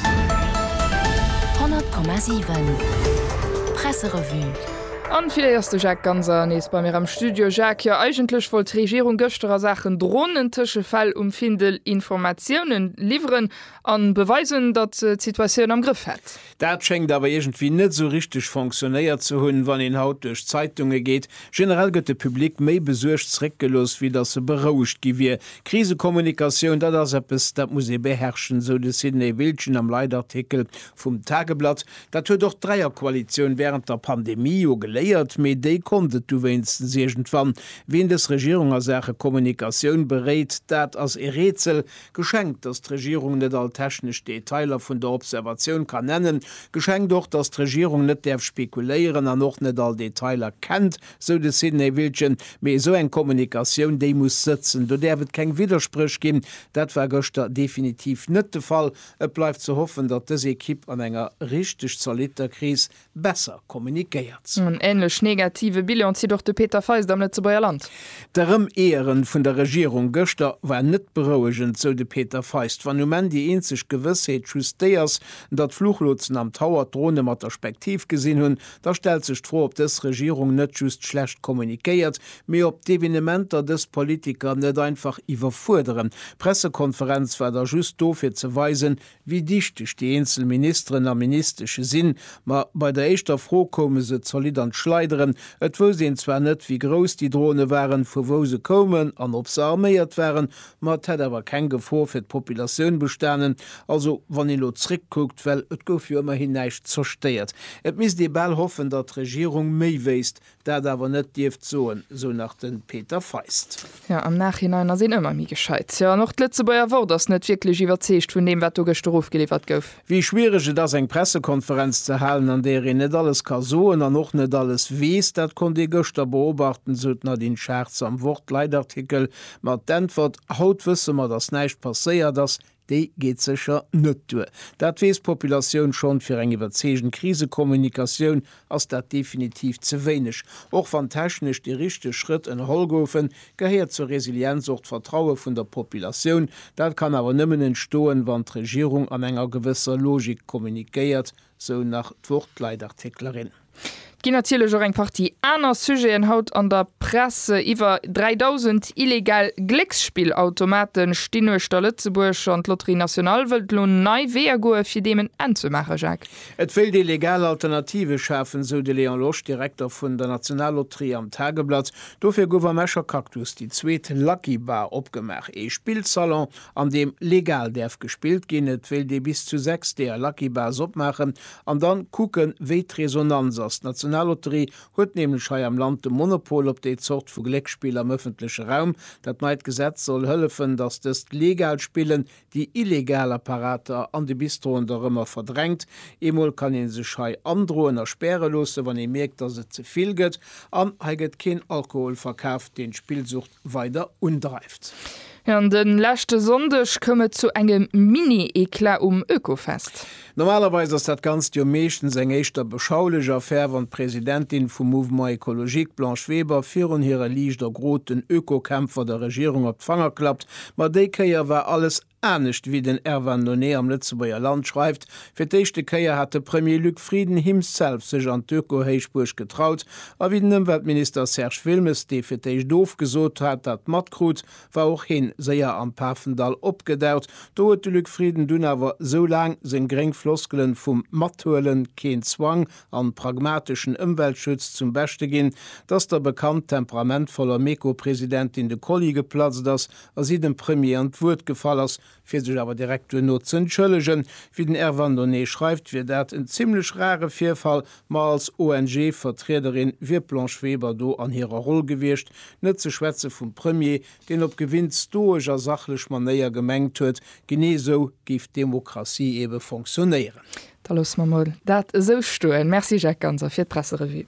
100,7 Presserevue. An villait ass de Jacques Ganser nees bei mir am Studio. Jacques, jo eigentlech wollt d'Regierung gëschter a Saachen Dronen Tëschefäll um Findel Informatiounen liwweren an beweisen datt se d'Situatioun am Grëff hätt. Dat schéngt awer iergendwéi net esou richteg fonctionnéiert ze hunn. Wann een haut duerch d'Zeitungen geet, Generell gëtt de Public méi besuergt zeréckgelooss, wéi datt e berouegt gi wier. Krisekommunikatioun, dat ass eppes, dat muss ee beherrschen, esou de Sidney Wiltgen am Leitartikel vum Tageblatt. Dat huet och d'Dräierkoalitioun wärend der Pandemie jo geléiert, mee déi konnt et du wéinstens iergendwann. Wien dës Regierung a Saache Kommunikatioun beréit, dat ass e Rätsel. Geschenkt, dass d'Regierung net all technesch Detailer vun der Observatioun kann nennen. Geschenkt och, dass d'Regierung net däerf spekuléieren an och net all Detailer kennt, sou de Sidney Wiltgen. Mee esou eng Kommunikatioun, déi muss sëtzen. Do däerf et keng Widderspréch ginn. Dat war gëschter definitiv net de Fall. Et bleift ze hoffen, datt dës Ekipp an enger richteg zolitter Kris besser kommunikéiert. En ähnlech negative Bilan zitt och de Peter Feist am Lëtzebuerger Land. D'Erëmeeëren vun der Regierung gëschter war net berouegend, sou de Peter Feist. Wann um Enn déi eenzeg Gewëssheet just déi ass, datt Fluchlotsen am Tower d'Drone mat der Spektiv gesinn hunn, da stellt sech d'Fro, ob dës Regierung net just schlecht kommunikéiert, mee ob d'Evenementer dës Politiker net einfach iwwerfuerderen. D'Pressekonferenz war da just do fir ze weisen, wéi dichteg déi eenzel Ministeren a Ministesche sinn, ma bei der éischter Fro koume se zolidd an d'Schleideren. Et wousst een zwar net, wéi grouss déi Drone waren, vu wou se koumen an ob se arméiert waren, ma et hätt awer keng Gefor fir d'Populatioun bestanen. Also wann ee lo zréckkuckt, well et gouf jo ëmmerhin näischt zerstéiert. Et misst ee bal hoffen, datt d'Regierung méi wéisst, Dat awer net dierft soen, sou nach de Peter Feist. Jo, am Nachhinein ass een ëmmer méi gescheit. Jo, an och d'Lëtzebuerger Wort ass net wierklech iwwerzeegt vun deem, wat do gëschter ofgeliwwert gouf. Wéi schwiereg et ass, eng Pressekonferenz ze halen, an där een net alles ka soen an och net alles weess, dat konnt ee gëschter beobachten, sou d'Nadine Schartz am Wort-Leitartikel. Ma d'Äntwert, Haut wësse mer, datt näischt passéiert ass, Déi geet sécher net duer. Dat weess d'Populatioun schonn. Fir eng iwwerzeegend Krisekommunikatioun ass dat definitiv ze wéineg. Och wann technesch déi richteg Schrëtt ënnerholl goufen, gehéiert zur Resilienz och d'Vertraue vun der Populatioun. Dat kann awer nëmmen entstoen, wann d'Regierung an enger gewësser Logik kommunikéiert Sou nach d'Wort-Leitartiklerin. Et ginn natierlech och eng Partie aner Sujeten haut an der Press. Iwwer 3.000 illegal Glécksspillautomate stinn uechter Lëtzebuerg an d'Loterie Nationale wëllt elo nei Weeër goe fir deem en Enn ze maachen, Jacques. Et wéilt ee legal Alternative schafen, sou de Léon Losch, Direkter vun der Nationalloterie am Tageblatt. Dofir gouf am Escher Cactus déi zweet Lucky Bar opgemaach, ee Spillsalon an deem legal däerf gespillt ginn, et wéilt ee bis zu 6 deeër Lucky Bars opmaachen an dann kucken, wéi d'Resonanz ass. D'Nationallotterie huet nämlech hei am Land de Monopol op déi Zort vu Glécksspill am ëffentleche Raum. Dat neit Gesetz soll hëllefen, datt dëst legal Spillen déi illegal Apparater an de Bistroen da rëmmer verdrängt. Eemol kann ee sech hei androen a späre loossen, wann ee mierkt, datt et ze vill gëtt. An hei gëtt keen Alkohol verkaaft, deen d'Spillsucht weider undreift. An de leschte Sonndeg koum et zu engem Mini-Eclat um Oekofest. Normalerweis ass dat Ganzt jo meeschtens eng éischter beschaulech Affär, wann d'Presidentin vum Mouvement Ecologique, Blanche Weber, virun hire liicht ergroten Oekokämpfer der Regierung op d'Fanger klappt. Ma déi Kéier war alles Anescht wéi den Erwan Nonee am Lëtzebuerger Land schreift, Fir d'éischte Kéier hat de Premier Luc Frieden himself sech an d'Öko-Héichbuerg getraut, a wéi den Ëmweltminister Serge Wilmes, dee fir d'éischt ofgesot hat, dat matkrut, war och heen séier am Pafendall opgedaucht. Do huet de Luc Frieden dunn awer, sou laang seng gréng Floskelen vum Mathuelen, keen Zwang an pragmateschen Ëmweltschutz zum Beschte ginn, dass der bekannt temperamentvoller Meko-Presidentin de Kolli geplatzt ass, a si dem Premier an d'Wuert gefall ass, fir sech awer direkt duerno z'entschëllegen. Wéi den Erwan Donné schreift, wier dat en zimmlech rare Virfall, ma als ONG-Vertriederin wier d'Blanche Weber do an hirer Roll gewiescht, net ze schwätze vum Premier, deen op gewinnt stoesch a sachlech Manéier gemengt huet, genee esou géif d'Demokratie ebe fonctionnéieren. Da loosse mer mol dat esou stoen. Merci Jacques Ganser fir d'Presserevue.